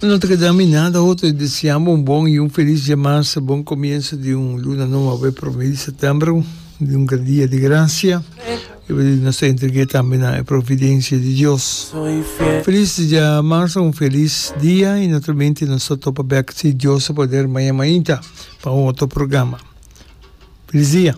No ta keda mi nada otro di deseabo un bon y un feliz dia mas, bon comienzo di un luna nova awe prome di septiembre, di un gran dia di gracia. Awe nos ta entregue tambe na e providencia di Dios. Feliz dia mas, un feliz dia y naturalmente nos ta topa bek si Dios a poder maña mainta pa un otro programa. Feliz dia.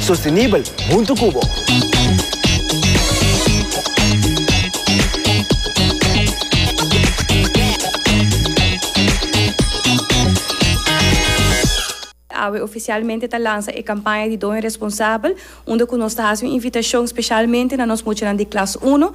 Sostenibel huntu cu bo. Awe oficialmente ta lansa e campaña di Doña Responsabel, unda cu nos ta haci un invitacion specialmente na nos muchanan di klas uno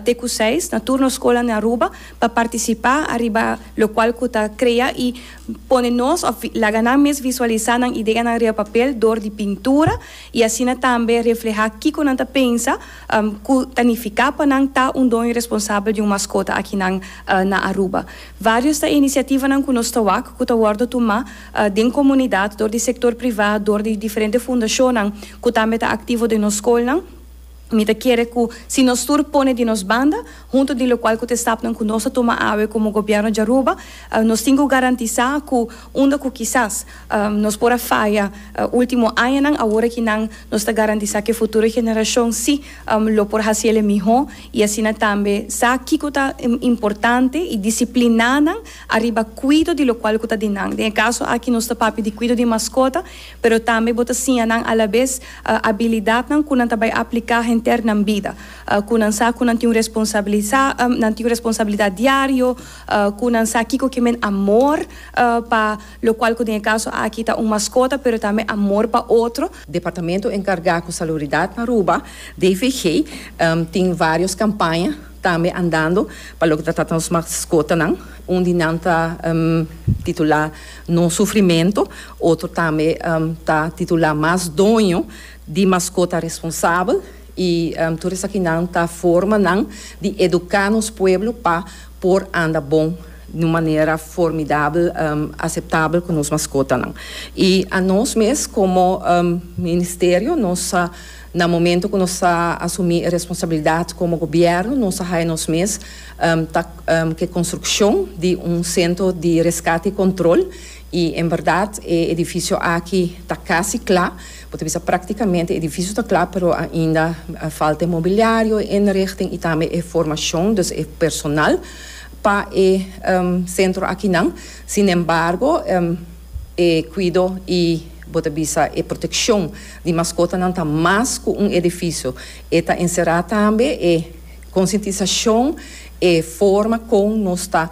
te cu seis na tur nos scolnan den Aruba pa participa ariba locual cu ta crea y Pone nos of laga nan mes visualisá nan ideanan riba papel dor di pintura i asina tambe reflehá kiko nan ta pensa ku ta nifiká pa nan ta un doño responsabel di un maskota akinan na Aruba. Vários ta e inisiativanan ku nos ta wak ku ta wòrdu tumá den komunidat dor di sektor privá, dor di diferente fundashonnan ku tambe ta aktivo den nos skolnan. Mi ta kere ku si nos tur pone di nos banda, huntu di lokual ku ta estapnan ku nos ta tuma awe komo gobièrnu di Aruba, nos tin ku garantisá ku unda ku kisas nos por a faya último añanan, awor aki nan nos ta garantisá ku e futuro generashon sí lo por hasi el e mihó i asina tambe sa kiko ta importante i disipliná nan ariba kuido di lokual ku ta di nan. Den e kaso aki nos ta papia di kuido di maskota. pero tambe bo ta siña nan alabes abilidatnan ku nan ta bai apliká henter nan bida, ku nan sa ku nan tin un responsabilisa, nan tin un responsabilidat diario, ku nan sa kiko ke men amor pa lo kual ku den e kaso aki ta un maskota, pero tambe amor pa otro. Departamento enkargá ku Saluridat na Aruba, DVG, tin vários kampaña tambe andando pa loke ta trata nos maskotanan, un di nan ta titulá, No sufrimentu, otro tambe ta titulá mas doño di maskota responsabel i tur esakinan ta forma nan di eduká nos pueblo pa por anda bon di un manera formidabel, aseptabel ku nos maskotanan. I anos mes komo ministerio nos a na momentu ku nos a asumí e responsabilidat komo gobièrnu nos a haya nos mes. Ta ke construccion di un centro di rescate y control y en berdad e edificio aki ta casi cla. Bo ta bisa practicamente e edificio ta cla pero ainda falta e mobiliario, e inrichting y tambe e formacion, dus e personal pa e centro akinan. Sin embargo e cuido y bo ta bisa e proteccion di mascotanan ta mas cu un edificio. E ta encera tambe e. Konsientisashon e forma kon nos ta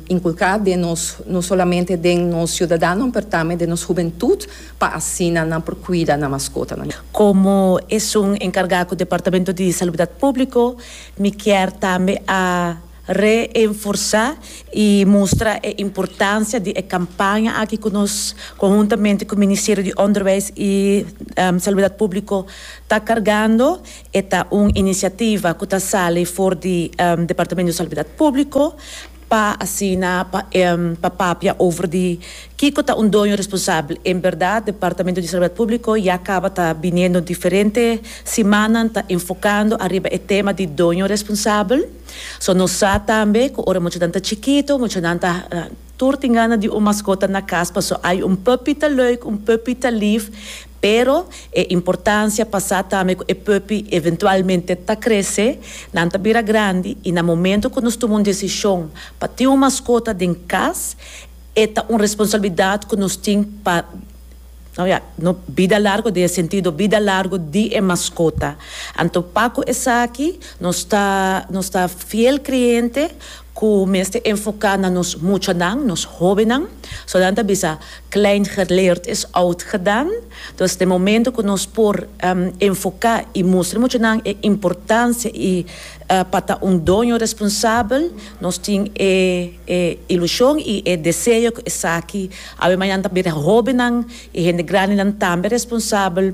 inkulká den nos, no solamente den nos siudadanon, pero tambe den nos hubentut, pa asina nan por kuida nan maskotanan. Komo esun enkargá ku Departamento di Salubridat Públiko, mi kier tambe a reenforsá i mustra e importansia di e kampaña aki ku nos konhuntamente ku Ministerio di Onderwijs i Salubridat Públiko ta kargando, E ta un inisiativa ku ta sali for di Departamento di Salubridad Públiko pa asina pa papia over di kiko ta un doño responsabel. En berdad Departamento di Salubridad Públiko ya kaba ta biniendo diferente simannan ta enfokando ariba e tema di doño responsabel. So nos sa tambe ku ora muchanan ta chikito, muchanan ta tur tin gana di un maskota na kas paso ai un puppy ta lùik, un puppy ta lìf, Pero e importancia pa sa tambe cu e puppy eventualmente ta crece, nan ta bira grandi y na momento cu nos tuma un decision pa tin un mascota den cas, e ta un responsabilidad cu nos tin pa no bida largo den e sentido bida largo di e mascota. Anto pa cu esaki nos ta nos ta fiel cliente. Ku mester enfoká na nos muchanan, nos hóbennan. So nan ta bisa, Klein geleerd is oud gedaan. Dus den momento ku nos por enfoká i mustra muchanan e importansia i pa ta un doño responsabel, nos tin e ilushon i e deseo ku esaki a bai mañana ta bira hóbennan i hende grandenan tambe responsabel.